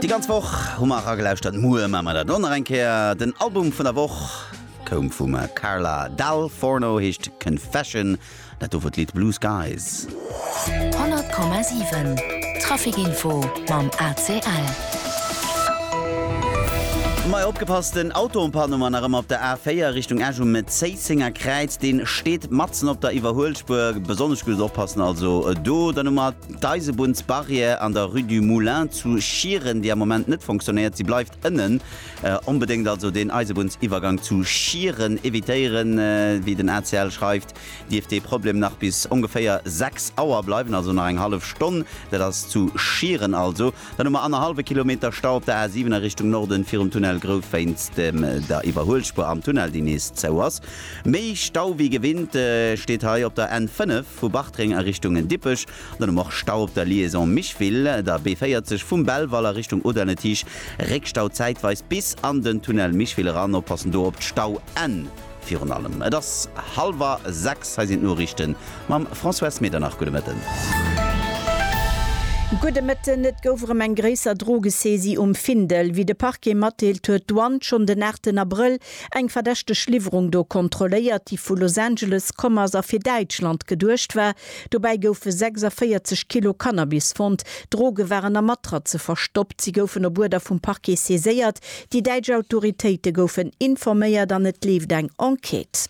Déi ganz Woch hu mer eragelauschtert, muer maache mer dat och nach eng Kéier. Den Album vun der Woch koum vum Carla Dal Forno, heescht Confession, dat do wor d'Lidd Blue Skies. 100,7 Traficinfo mam ACL. Majo opgepasst, en Auto en panne war nach ëmmer op der A4 Richtung Esch um Zéissenger Kräiz. Deen steet matzen op der Iwwerhuelspuer, besonnesch guddes oppassen also do. Dann hu mer. D'Eisebunnsbarrière an der Rue du Moulin zu Schieren, déi am Moment net fonctionnéiert, si bleift ënnen. Onbedéngt also deen Eisebunnsiwwergang zu Schieren evitéieren. Wéi den ACL schreift, dierft dee Problem nach bis ongeféier 6 Auer bleiwen, also nach eng hallef Stonn. Dat ass zu Schieren also. Dann hu mer annerhallwe Kilometer Stau op der A 7 a Richtung Norden virum Tunnel Grouth wéinst der Iwwerhuelspur am Tunnel, déi nees zou ass. Méi Stau wéi gewinnt steet hei op der N 5. Vu Bartreng a Richtung Dippech an um och Stau op der Liaison Micheville, der B40 vum Belval a Richtung Audernetich, Réckstau zäitweis bis an den Tunnel Micheville eran. Oppassen do op d'Stauenn virun allem. Et ass hallwer 6, hei sinn d'Noriichten mam Françoise Medernach. Gudde Mëtten. Gudde Mëtten. Et gouf erëm eng gréisser Drogesaisie um Findel. Wéi de Parquet matdeelt, huet d'Douane schonn den 8 Abrëll Eng verdächteg Liwwerung do kontrolléiert, déi vu Los Angeles komm ass a fir Däitschland geduecht war. Dobäi goufe 46 Kilo Cannabis fonnt. D'Droge waren a Matraze verstoppt. Si goufen op Uerder vum Parquet saiséiert. Déi däitsch Autoritéite goufen informéiert an et leeft eng Enquête.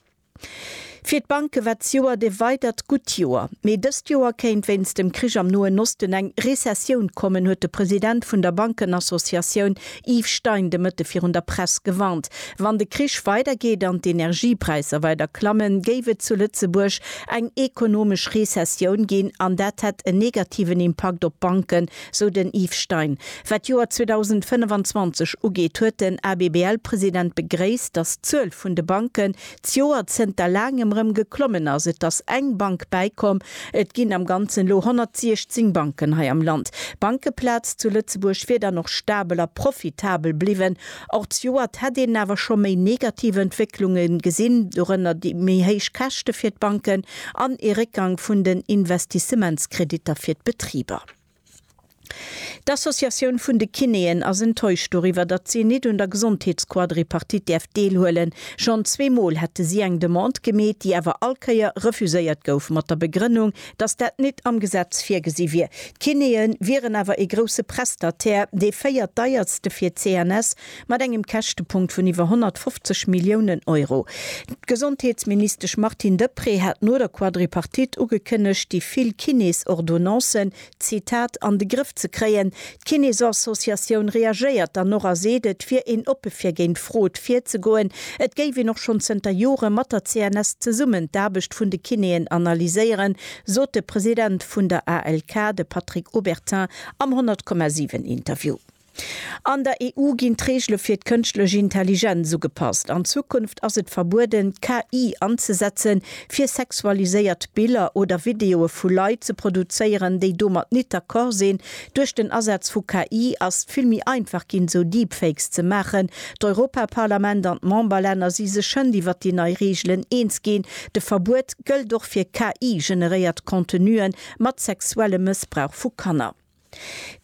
Fir d'Banke war d'Joer de weidert gutt Joer. Mee dëst Joer kéint wéinst dem Krich am Noen Osten eng Rezessioun kommen, huet de President vun der Bankenassociatioun Yves Stein de Mëtte virun der Press gewarnt. Wann de Krich weidergeet an d'Energiepräisser weider klammen, géif et zu Lëtzebuerg eng ekonomesch Rezessioun ginn an dat hätt en negativen Impakt op d'Banken, Sou den Yves Stein. Wat d'Joer 2025 ugeet, huet den ABBL-President begréisst, datt d'Zuel vun de Banken d'Joer zënter laangem erëm geklommen ass. Et ass eng Bank bäikomm. Et ginn am Ganzen elo 116 Banken hei am Land. D'Bankeplaz zu Lëtzebuerg wier dann och stabel a profitabel bliwwen. Och d'Joert hätt een awer scho méi negativ Entwécklunge gesinn, dorënner déi méi héich Käschte fir d'Banken an ee Réckgang vun den Investissementskreditter fir d'Betriber. D'Associatioun vun de Kinéen ass enttäuscht doriwwer, datt si nit un der Gesondheetsquadripartite däerf deelhuelen. Schonn zwee Mol hätte si eng Demande gemeet, déi awer all Kéier refuséiert gouf, mat der Begrënnung, datt dat nit am Gesetz virgesi wier. D'Kinéen wieren awer ee grousse Prestataire, dee véiert deierste fir d'CNS Mat engem Käschtepunkt vun iwwer 150 Milliounen Euro. D'Gesondheetsministesch Martine Deprez hat no der Quadripartite ugekënnegt, déi vill Kineesordonnancen, Zitat, an de Grëff ze kréien. D'Kineesassociatioun reagéiert dann och a seet, et wier een oppe fir géint Frod virzegoen. Et géif een och schonn zënter Jore mat der CNS zesummen d'Aarbecht vun de Kinéen analyséieren, sot de President vun der ALK, de Patrick Obertin am 100,7 Interview. An der EU ginn d'Reegele fir d'kënschtlech Intelligenz ugepasst. An Zukunft ass et verbueden, KI anzesetzen, fir sexualiséiert Biller oder Videoe vu Leit ze produzéieren, déi domat nit d'accord sinn. Duerch den Asaz vu KI ass et vill méi einfach ginn, esou Deepfakes ze maachen. D'Europaparlament an d'Memberlänner si sech schënnt iwwert déi nei Reegelen eens ginn. De Verbuet gëllt och fir KI-generéiert Contenuen mat sexuellem Mëssbrauch vu Kanner.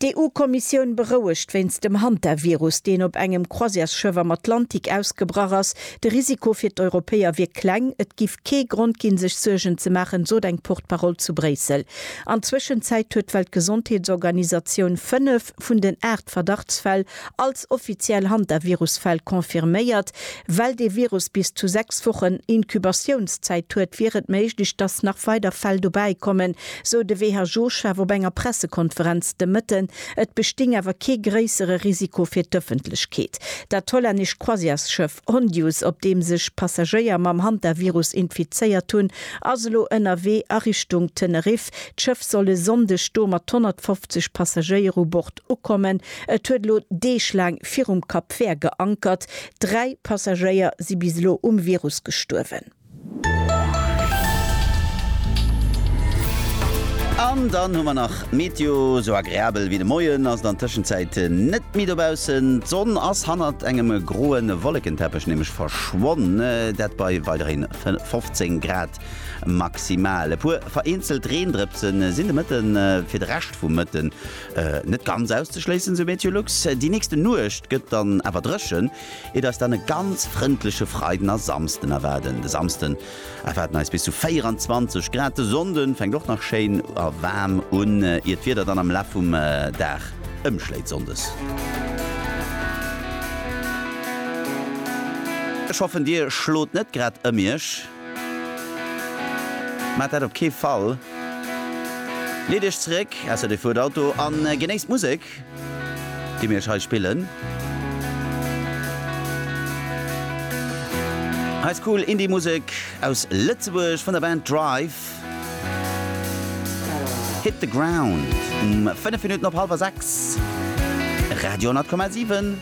D'EU-Kommissioun berouegt wéinst dem Hantavirus, deen op engem Croisièresschëff am Atlantik ausgebrach ass. De Risiko fir d'Europäer wier kleng. Et giff kee Grond ginn, sech Suergen ze maachen, sot eng Porte-Parole zu Bréissel. An Zwëschenzäit huet d'Weltgesondheetsorganisatioun fënnef vun den aacht Verdachtsfäll Als offiziell Hantavirus-Fäll confirméiert. Well dee Virus bis zu 6 Wochen Inkubatiounszäit huet, wier et méiglech, datt nach weider Fäll dobäi kommen, sou de WHO-Chef op enger Pressekonferenz de Mëtten. Et besting awer kee gréissere Risiko fir d'Ëffentlechkeet. Dat hollännescht Croisièresschëff. Hondius, op deem sech Passagéier mam Hantavirus infizéiert hunn, ass elo ënnerwee a Richtung Teneriff. D'Schëff soll e Sonndeg do mat 150 Passagéier u Bord ukommen. Et huet elo Deeg laang virum Cap Vert geankert. Dräi Passagéier si bis elo um Virus gestuerwen. An dann hu mer nach d'Meteo. Sou agreabel wéi de Moien ass et an Tëschenzäit net méi dobaussen. D'Sonn ass hannert engem groe Wollekenteppech nämlech verschwonn, dat bei weiderhi 15 Grad maximal. E puer vereenzelt Reendrëpse sinn de Mëtte fir de Rescht vum Mëtten net ganz auszeschléissen, sou Meteolux. Déi nächste Nuecht gëtt dann awer dréchen, Et ass dann e ganz frëndleche Freiden a Samsden erwaarden. De Samsden erwaarden eis bis zu 24 Grad. De Sonnde fänkt och nach schéin a waarm un, ier d'Wieder dann am Laf vum Dag ëmschléit. Sonndes. Ech hoffen dir schlot net grad ëm iech. Maacht dat op kee Fall. Leet iech zeréck, ausser dir fuert Auto, a genéisst d'Musek. déi mir iech hei spillen. Hei ass cool Indie Musek aus Lëtzebuerg vun der Band Drive. Hit the Ground um 5 Minutten op hallwer 6. Radio 10,7.